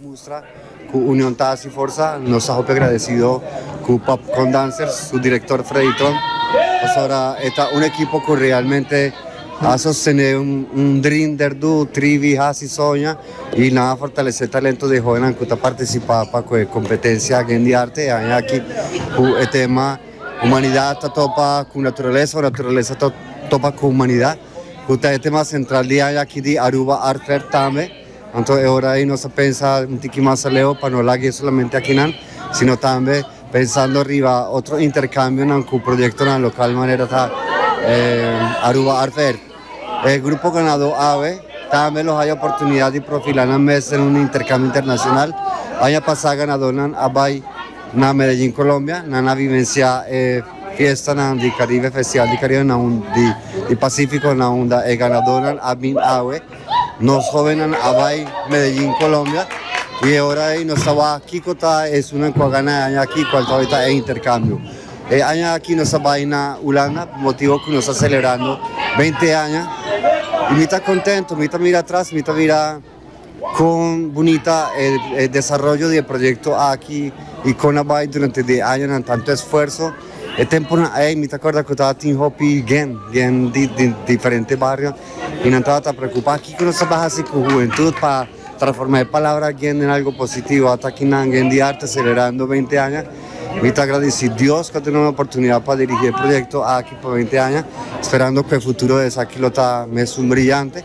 Mustra cu union ta haci forza. Nos ta hopi agradecido cu Popcorn Dancers, su director Freddy Tron, pasobra e ta un ekipo cu realmente a sostene un dream der du, trivi, haci, soña y nan a fortalece talento den hoenan cu ta participa pa cu e competencia Gen di Arte e aña aki cu e tema Humanidad ta topa cu Naturaleza o Naturaleza ta topa cu Humanidad. cu ta e tema central di aña aki di Aruba Art Fair tambe. Anto e ora ey nos a pensa un tiki mas aleo pa no lag'e solamente akinan, sino tambe pensando riba otro intercambionan cu proyectonan local manera ta e Aruba Art Fair. E grupo ganado awe tambe lo haya oportunidad di profila nan mes den un intercambio internacional. Aña pasa ganadornan a bay na Medellin Colombia nan a vivencia e. Fiestanan di Caribe Festival di Caribe na un di Pacifico na unda e ganadornan a bin awe. Nos jovennan a bai Medellin Colombia y e ora ey nos ta waha kico ta esunnan cu a gana e aña aki cual tabata ta e intercambio. E aña aki nos a bai na Hulanda por motibo cu nos ta celebrando beinti aña y mi ta contento mi ta mira atras mi ta mira Con bunita e desaroyo di e proyecto aki y con a bay durante di e añanan tanto esfuerzo. E temponan ey mi ta corda cu tabatin hopi guén, guén di diferente bario y nan tabata preocupa kico nos ta bay haci cu hubentud pa transforma e palabra guén den algo positivo. Ata aki nan guén di arte celebrando veinte aña. Mi ta agradici Dios cu a duna nan e oportunidad pa dirigi e proyecto aki pa veinte aña, sperando cu e futuro esaki lo ta mesun brillante.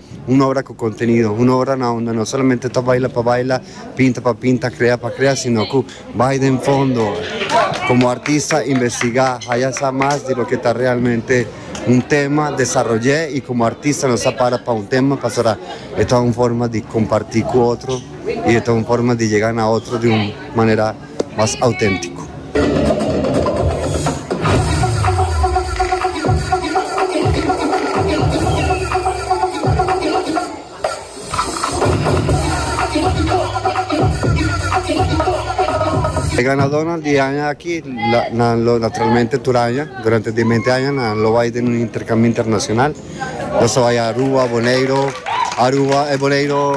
Un obra cu contenido, un obra na unda no solamente ta baila pa baila, pinta pa pinta, crea pa crea, sino cu bay den fondo, como artista investiga, haya sa mas di loke ta realmente un tema, desaroye y como artista nos a para pa un tema pasobra e ta un forma di comparti cu otro y e ta un forma di yega na otro di un manera. mas auténtiko. E ganadónan di e aña aki nan lo naturalmente tur aña durante di e mente aña nan lo bai den un interkambio internashonal. Nan sa bai Aruba, Boneiro, Aruba e Boneiro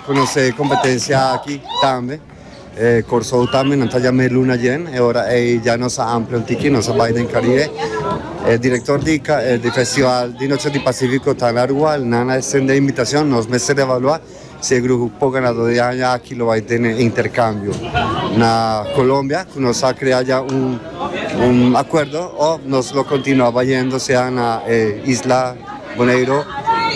konosé e kompetensia aki tambe. E Kòrsou tambe nan ta yam'é luna djen, e ora ei dja nos a amplia un tiki, nos a bai den Karibe. E direktor di di festival di Noche di Pasífiko ta na rua, nan a estendé inbitashon, nos mester evaluá si e grupo ganadó di aña aki lo bai tene interkambio na Kolombia, ku nos a krea dja un un akuerdo, òf nos lo kontinuá bayendo sea na e isla Boneiro,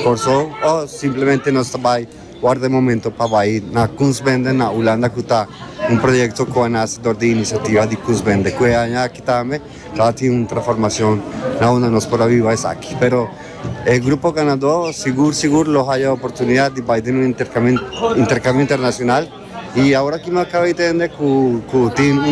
Kòrsou, o simplemente nos ta bai. Wòrda e momento pa bai na Kunstbende na Ulanda ku ta un proyekto ku a nase dor di inisiativa di Kunstbende ku e aña aki tambe ta tin un transformashon na unda nos por a biba esaki. Pero e grupo ganadó sigur sigur lo haya oportunidat di bai den un interkambio internashonal i awor aki mi a kaba di tende ku tin un.